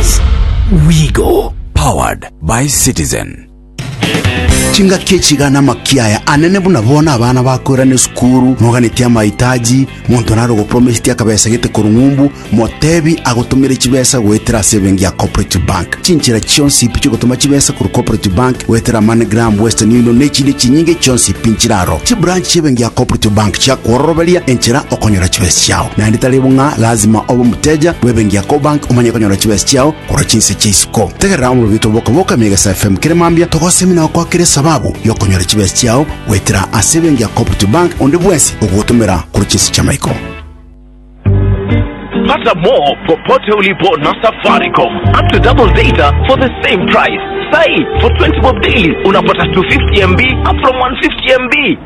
Sports. Wigo, powered by Citizen. Chingaki echi iga namakia aya anene buna bono abana bakoirana esukuru moganetie amahitaji monto naro ogopromiseti akabesa gete korwa ng'umbu motebi agotomere chibesa goetera ase ebenki ya cooperative bank chinchera chionsi ipi chigotoma chibesa korwa cooperative bank goetera moneygram western union ne chinde chinyinge chionsi ipi nchiraro chibranch chiebenki ya cooperative bank chiakwororoberia enchera okonyora chibesa chiao naende tari bo ng'a lazima obe omoteja bw'ebenki ya Cobank omanye konyora chibesa chiao korwa chinse chia isiko. Tegerera omorobio oito bw'okoboka ime Egesae FM kere mambia togosemi na gokwakera esababu y'okonyora chibesa chiao goetera ase ebenki ya Cooperative Bank onde bwensi ogogotomera korwa chinse chi'amaiko. Pata more popote ulipo na Safaricom. Up to double data for the same price. Sai, for 20 bob daily unapata 250 MB up from 150 MB.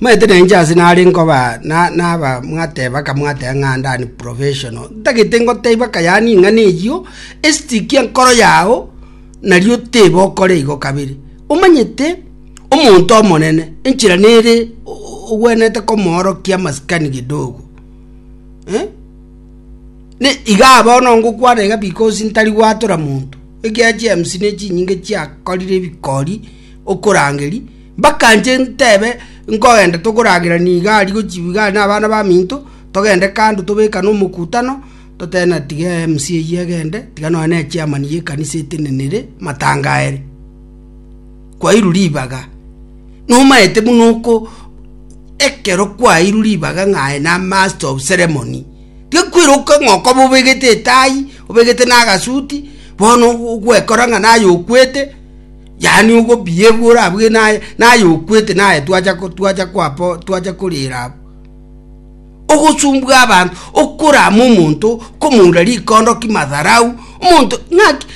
Omanyete nainche ase nare nkoba na naba mwateba akamwateba ng'a ande an professional, ntagete ngoteba aka yaani ing'ana eyio esitikia nkoro yao nario teba okore igo kabere. Omanyete omonto omonene enchera nere ogwenerete komoorokia amasikani kidogo eh, ne igaa bono ngokwana iga because ntari gwatora monto, ekiagera chiemisi ne chinyinge chiakorire ebikori okorangeri. Mbakanche ntebe, Nkogenda tokoragera nigo aria gochiigwa igare nabana baminto, togende kando tobekane omokutano, toteene na tiga MC eyio egende, tiga nonya ne chairman y'ekanisa etenene ere matanga aere. Kwairwa ribaga, nomaete buna oko ekero kwairwa ribaga ng'a aye na master of ceremony, tiga kweroka ng'a okoba obegete etai, obegete na agasuti, bono ogwekora ng'a naye okwete, Yaani ogobiya ebwe orabue naye, naye okwete naye twacha ko, twacha kwapo, twacha korera abwo. Ogosumbua abanto, okorama omonto, komoura rikondoki, madharau, omonto ng'aki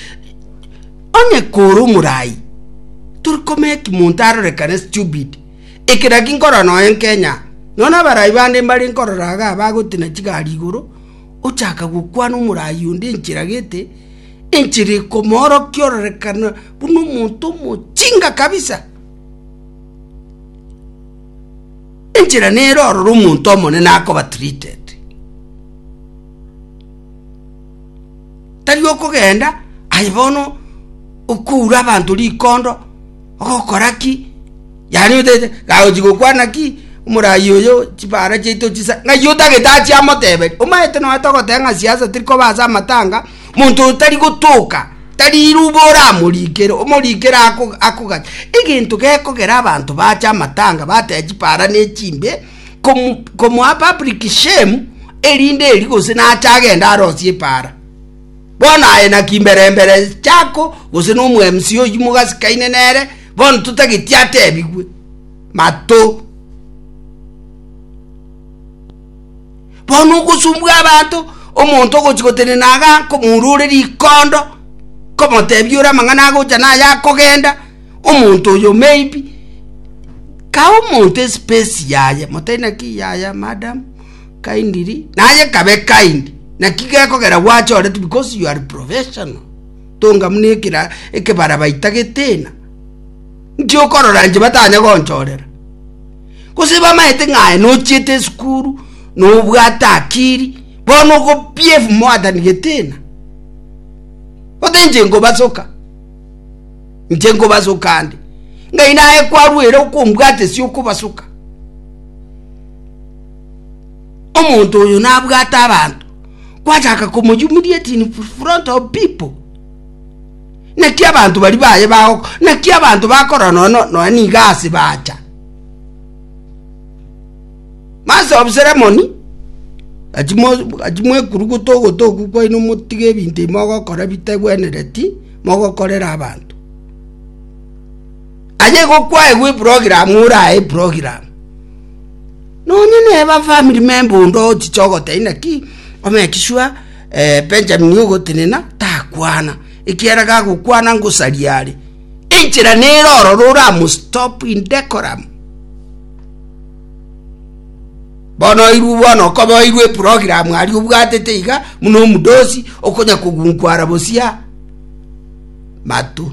onye kore omorai tori komeki monto arorekane stupid. Eke naki nkorora nonya Kenya, nonya abarai bande mbare nkorora igaa bagotena chigari igoro, ochaka gokwana omorai onde enchera gete. Enchera ekomoorokia ororekane buna omonto omochinga kabisa. Enchera nere ororo omonto omonene akoba treated. Tari okogenda aye bono okoura abanto rikondo ogokora ki yaani otaete gaochi gokwana ki omoraai oyo chibara chiaito chisa ng'ai otagete achia amoteberie omanyete noeta ogoteba ng'a siasa teri koba ase amatanga. Monto oyo tari gotoka, tari iruba oramorikere, omorikere akogacha. Egento gekogera abanto bache amatanga bateba chipara ne chimbe, komoa public shame erinde eri gose nache agenda arosie epara. Bono aye naki mbere mbere chako gose no omo MC oywo mogasikaine nere bono totageti atebigwe. Mato. Bono ogosumbwa abanto, omonto ogochia gotenena Hagaa nkomourure rikondo, nkomotebia ore amang'ana agocha na aya akogenda, omonto oyo maybe kae omonto espesi yaye, motebi naki yaya madam kindly, naye kabe kind, naki gekogera gwacha oreti because you are professional, tonga buna ekera ekebara baita getena, nki okorora inche batanya gonchorera. Gose bamaete ng'a aye nochiete esukuru, nobwate akiri, bono ogopia efumo Adani geteena? Gose inche nkobasoka? Inche nkobasoka ande, ng'ai naye kwarwa ere okombwata ase okobasoka? Omonto oyo nabwate abanto, kwachaka komoyumiria it in front of people. Naki abanto baria baye bagokwa, naki abanto bakorora nono nonya nigo ase bacha. Master of ceremony, gachi mo- gachi mwekuruguta ogotoku kwaino motige ebinto ebi mogokora bitegwenereti mogokorera abanto. Aye igo kwaegwa eprogramu orae eprogramu, nonya neba family member onde ochiche ogoteba inaki omeki sure Benjamini ogotenena takwana, ekiagera gagokwana ngosaria are. Enchera nere ororo oramostop in decorum. Bono oirwe bono okoba oirwe program ari obwatete iga muna omudosi okonya kogunkwara bosia matu.